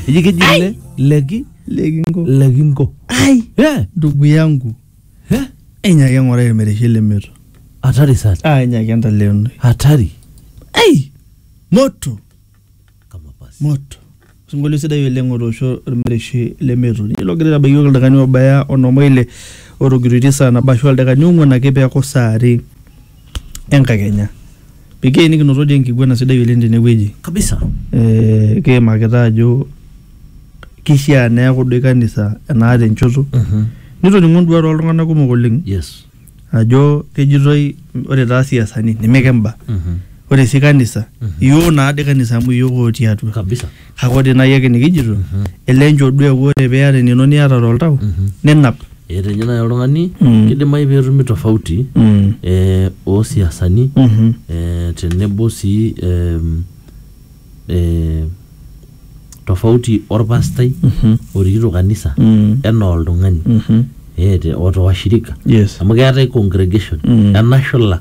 eji keji le leki lekinko lekinko ai Eh, ndugu yangu eh, enyaki eng'orai irmereshi lemeto hatari sana ah enyaki entaleonoi hatari ai moto kama basi moto osinkolio sidai oleng otoosho irmereshi lemeto ninye logira aitabaiki yiok ildakani obaya onom oile otogiroitie saa nabo ashu ildakani ong'uan ake peeku saa are enkakenya Pekee nikinoto dii enkiguana sidai oleng tenewueji. Kabisa. Eh, kiimakita ajo kishaa neeku doi kanisa enaata enchoto. Mhm. Nitoning'o nduat oltung'anak kumok oleng Yes. ajo kejitoi ore taa siasani neme kemba. Mhm. Ore sii kanisa, Mhm. iyiok naa dii kanisa amu iyiok otii atua. Kabisa. Kake ore nai ake nikijito, ele nchoo duo eku ore piata enino niata toltau, ninap. Etejo nai oltung'ani Mm. kidimayu petumi tofauti Mm. eh, osiasani Mhm. eh, tenebo sii em, eh, tofauti orpastai Mhm. orikito kanisa Mm. enaa oltung'ani Mhm. eh, te- oto washirika Yes. amu keetae congregation Mm. enashula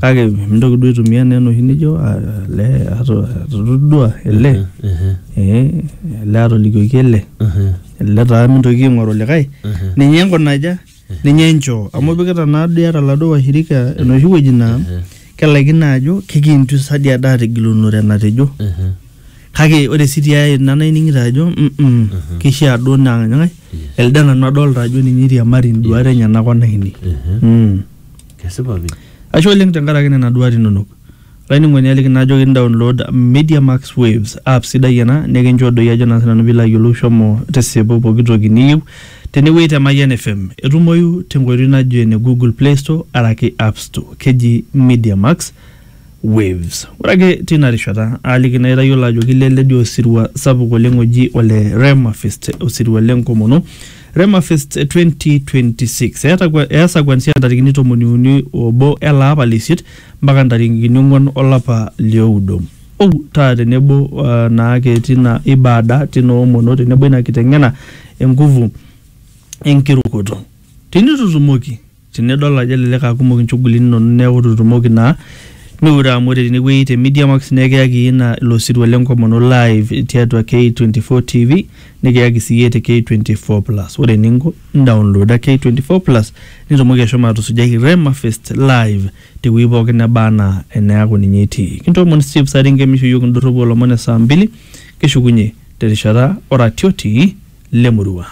kake mintoki duo aitumia naa enoshi nijo ah, ele ato- atodua ele Ehe, eh, ele atolikioki ele ehe, ele taa mintoki aing'oru likae ehe. ninye nkunaja ninye nchoo amu ipikita naa doi ata laduo washirika enoshi wueji naa Ehe, kelaikino ajo kikintu sadi ada atigilunore enatejo ehe, kake ore sii tiae ina naining'ito ajo mm -mm, kishaa duo naa nyae elde nanu adolta ajo ninye iriamari induat enyenak onainei ehe. mm. Kesipa pi. Ashe oleng tenkaraki nena duat inonok. Olainining'oni aliki naa ajoki nidaunlood Media Max Waves app sidai ena nikincho doi ajo naa sinanu piilo ayiolou shomo tisipu pooki toki niyieu tenewueji te Mayian FM. Etumoyu tenkoitoi najo ene Google Play Store araki App Store. Keji Media Max. Waves. Ore ake teina rishata aaliki naa itayiolo ajo keileledi osirua sapuk oleng oji ole Rema Fest, osirua le nkomono Rema Fest 2026. Eeta kwa- Easa kuanzia ntarikini tomoni uni obo ele apa le isiet mpaka ntarikini ong'uan olapa lioudo. Ou taa tenebo uh, naake tina ibada, tina omono tenebo ina kiteng'ena e nguvu enkirukoto. Tenitutumoki Tinidol ajo elelek aa kumok inchugulini inonok neeku itu itumoki naa miure amu ore tenewueji te Media Max naa ekiyaki iyie ina ilo sirua lenkomono live tiatua K24 TV nikiyaki sii iyie te K24 Plus. Ore eninko indaonloda K24 Plus nitumoki ashomo atusujai Rema Fest live tewueji pookin neba anaa eneaku ninye itii. Kintoomon Steve Saringe misho iyiook indorropu oolomon e saa mbili kishukunye terishata oratioti lemurua.